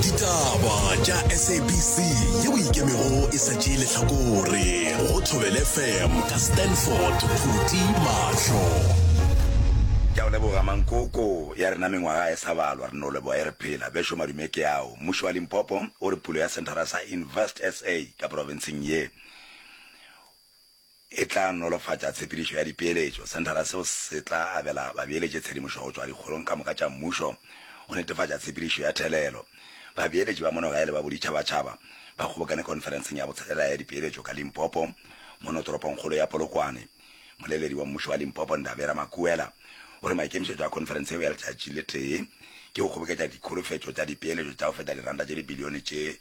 ditaba tša sabc yeo e ikemego e sa tšee lehlakore go thobele fm ka stanford phuti mahlo ke a o leboga mankoko ya rena mengwaga e sa balwa re no leboga e re phela bešo madume ke ao mmušo wa limpopo o re pulo ya centara sa invest sa ka profenseng ye e tla nolofatša tshepedišo ya dipeeletšo. Senthara seo se tla abela babeeletši tshedimošo go tšwa dikgorong ka moka tša mmušo go netefatša tshepedišo ya thelelo. Babeeletši ba monogae le ba boditšhabatšhaba ba kgobokane khonferenseng ya botshelela ya dipeeletšo ka Limpopo mono toropongkgolo ya Polokwane. Moleledi wa mmušo wa Limpopo Ndabera Makuela o re maikemišetšo a khonferense yeo ya letšatši le tee ke go kgoboketša dikholofetšo tša dipeeletšo tša go feta diranta tše dibilione tše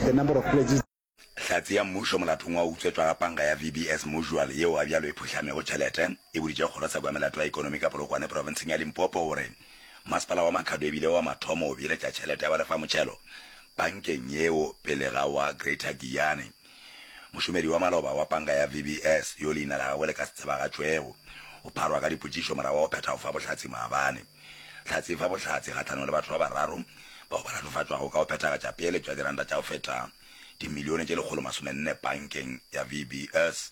The number of pledges. Hlatse ya Mmušo molatong wa utswetšwa ga panka ya VB As Musual yeo ga bjalo e phuhlamego tšhelete e boditše kgoro sa kwa melato ya ekonomi ka Polokwane profenseng ya Limpopo gore masepala wa Makhado e bile wa mathomo go beeletša tšhelete ya ba lefa motšhelo pankeng yeo pele ga wa Greater Giyani. Mošomedi wa maloba wa panka ya VB As yo leina la gagwe le ka se tsebagatšwego o pharwa ka dipotšišo morago wa go phetha go fa bohlatse maabane. Hlatse e fa bohlatse kgahlanong le batho ba bararo bao ba latofatšwago ka go phethagatša peeletšo ya diranta tša go feta dimilione tše lekgolo masome nne pankeng ya VBS,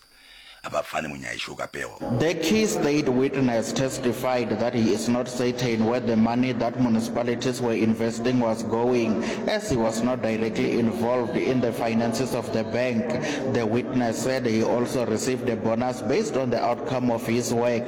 a ba fane monyaiši o ka pego. The key state witness testified that he is not certain where the money that municipalities were investing was going as he was not directly involved in the finances of the bank. The witness said he also received a bonus based on the outcome of his work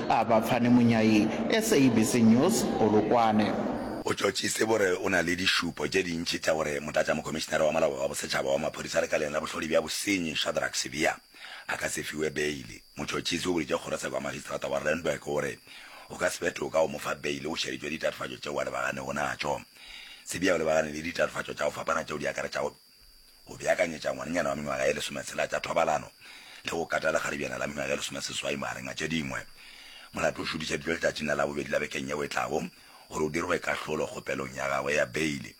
A ba fane monyai, SABC News, Polokwane. O tšotšitse gore o na le dišupo tše dintši tša gore motlatšamokhomišinare wa molao wa bosetšhaba wa maphodisa lekaleng la bohlodi bja bosenyi Shadrack Sibiya a ka se fiwe beile. Motšotšitse o boditše kgorotsheko ya magistrata wa Randburg o re go ka se be toka go mo fa beile o šeditšwe ditatofatšo tšeo a lebaganego natšo. Sibiya o lebagane le ditatofatšo tša go fapana tšeo di akaretšago go beakanyetša ngwanenyana wa mengwaga ye lesometshela tša thobalano le go kata lekgaribjana la mengwaga ye lesomeseswai magareng a tše dingwe. Molato o šudišeditšwe letšatšing la Labobedi la bekeng yeo e tlago gore o dirwe kahlolo kgopelong ya gagwe ya beile.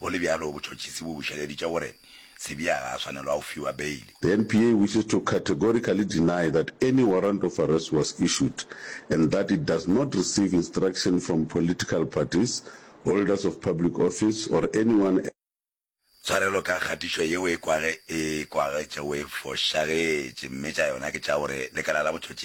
Go le bjalo, botšhotšhisi bo bušeleditše gore Sibiya ga a swanelwa go fiwa beile. The NPA wishes to categorically deny that any warrant of arrest was issued and that it does not receive instruction from political parties, holders of public office or anyone else. Tshwarelo ka kgatišo yeo e kwage e kwagetšego e fošagetše, mme tša yona ke tša gore lekala la botšhotšhisi